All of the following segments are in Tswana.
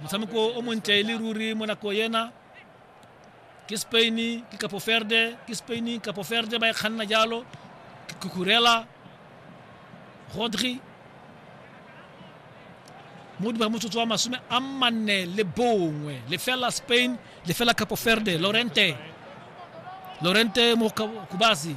motshameko o montle e le ruri mo nako ena ke spain ke capo verde ke spain capo verde ba e kganna jalo ke kukurela rodri mo diba motsotso wa masome a manne le bongwe lefela spain lefela capo verde lorente lorente mo kubazi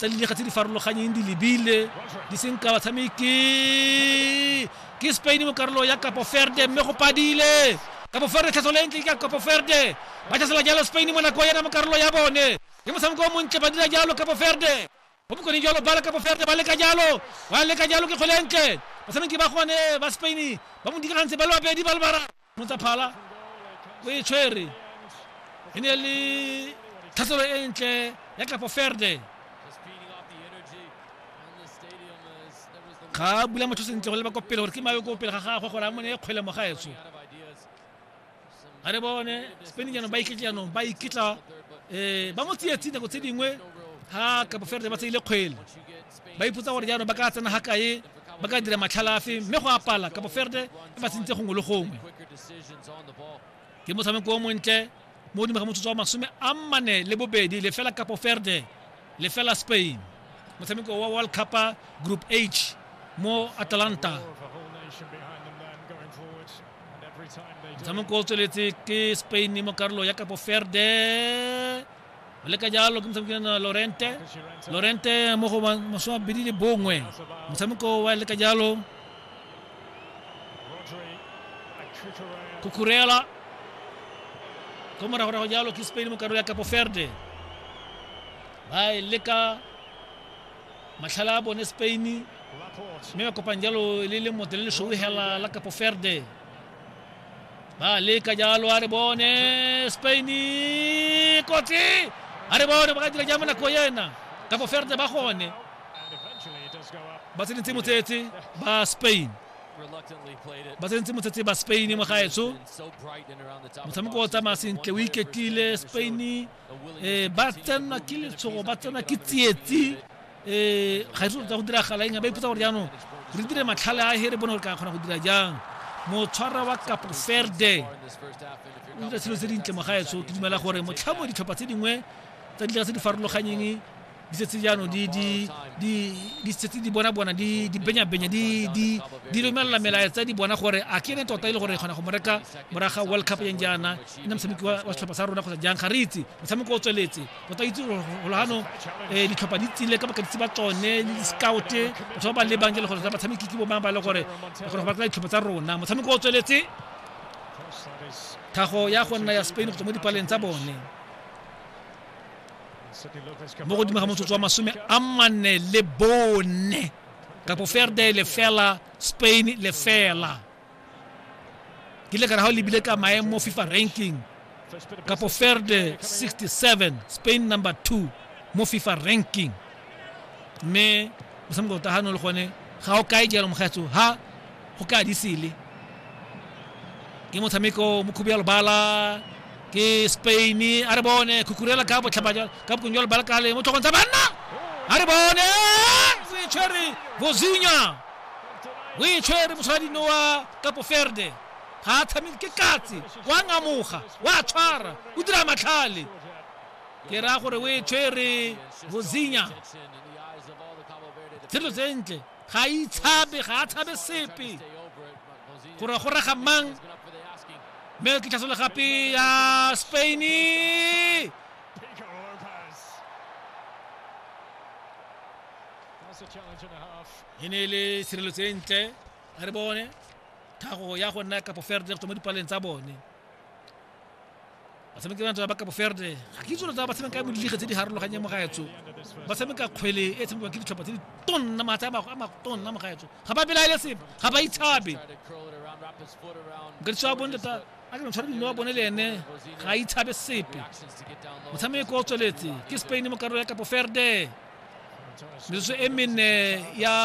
tsa liga tse di farologanyeng di lebile di seng ka batshameki ke spain mo karolo ya kapo ferde mme go padile kapo ferde tlhatlho le ntle ka kapo ferde ba tlhasela jalo spain mo nako yena mo karolo ya bone ke motshameko o montle ba dira jalo kapo ferde mo bokone jalo bala kapo ferde ba leka jalo ba leka jalo ke kgole ntle batshameki ba gone ba spain ba mo dikagantse ba le babedi ba le bararo motsaphala o e tshwere e ne le tlhaselo e ntle ya tlapo ferde ga a bula motho sentle go leba ko pele gore ke mayo ko pele ga gagwe gore a mone e kgwele mogaetsho ga re bone spending jaanong ba iketla jaanong ba iketla um ba mo tsietsing nako tse dingwe ga kapo ferde ba tseile kgwele ba ipotsa gore jaanong ba ka tsena ga kae ba ka dira matlhala afe mme go apala kapo ferde e ba sentse gongwe le gongwe ke motshameko o montle mo godimo ga motsotso wa masome a mmane le bobedi lefela kapo ferde lefela spain motshameko wa world cup group h mo atlanta motshameko o tsweletse ke spain mo karolo ya kapo ferde ba leka jalo ke motshameko na lorente lorente mo go masome a bedi le bongwe motshameko wa leka jalo kukurela ko moragorago jalo ke spain mo karolo ya capo verde ba e leka matlhala a bone spain mme ba kopang jalo le le motelele soogela la capo verde ba leka jalo a re bone spaini kotsi a re bone ba ka dira jang mo nako ena ka go ferde ba gone ba tsenetse motsetse ba spain ba tsenetse motsetse ba spain mo gaetsho motshameko o tsamaya sentle o iketlile spain um ba tsenwa ke letshogo ba tsenwa ke tsietsi um ga se tsa go diragala eng ba ipotsa gore jaanong re dire matlhale a he re bone gore ka kgona go dira jang motshwara wa kapo ferde o dira selo se dintle mogaetso ke dumela gore motlhamo ditlhopha tse dingwe tsa dira tse di farologanyeng di setse jaanong di setse di bona bona di benyabenya di romelela melaetsa di bona gore a ke ene tota e le gore e kgona go moreka moraga world cup yang jaana e ne motshameki wa setlhopha sa rona kgotsa jang ga re itse motshameko o tsweletse go tla itse gore ganong um eh, ditlhopha di tsile ka bakaditse ba tsone le di-scoute batho ba ba lebang ke le gore batshameki ke bo mang ba le gore gore go batla ditlhopha tsa rona motshameko o tsweletse tlhago ya go nna ya spain go tswa mo dipaleng tsa bone mo godimo ga motsotso wa masome a mane le bone kapo ferde lefela spain lefela ke le kana ga o lebile ka maemo fifa ranking kapo ferde 67 spain number 2 mo fifa ranking mme motshameko tota gano le gone ga o kae jalo mogetso ha go ka di sele ke motshameko mokhubi ya lobala ke spain a re bone khukurela ka botlhaba ka bokong jwa lobala ka le mo tlhogong tsa banna a re bone se tshwere vozinya o e tshwere moshwadino wa kapoferde ga a tshameke ke katse wa ngamoga wa tshwara o dira matlhale ke raya gore o e tshwere bozinya tshelo tse ntle ga a itshabe ga a tshabe sepe gore go rega mang mme ke tlhasole gape ya spaine e ne e le tshireletso e ntle a re bone tlhago ya go nna kapo ferde go tswa mo dipaleng tsa bone batshameki ba ntsona ba kapo ferde ga ke tsolo tsa ba tshameka mo dilige tse di harologanyeng mo gaetso ba tshameka kgwele e tshamekiwa ke ditlhopha tse di tonna maatsa a matonna mo gaetso ga ba belaele sepe ga ba itshabe nkadiso wa bone tota a ke ntshware dino wa bone le ene ga a itshabe sepe motshameko o tsweletse ke spain mo karolo ya kapo ferde metsotso e menne ya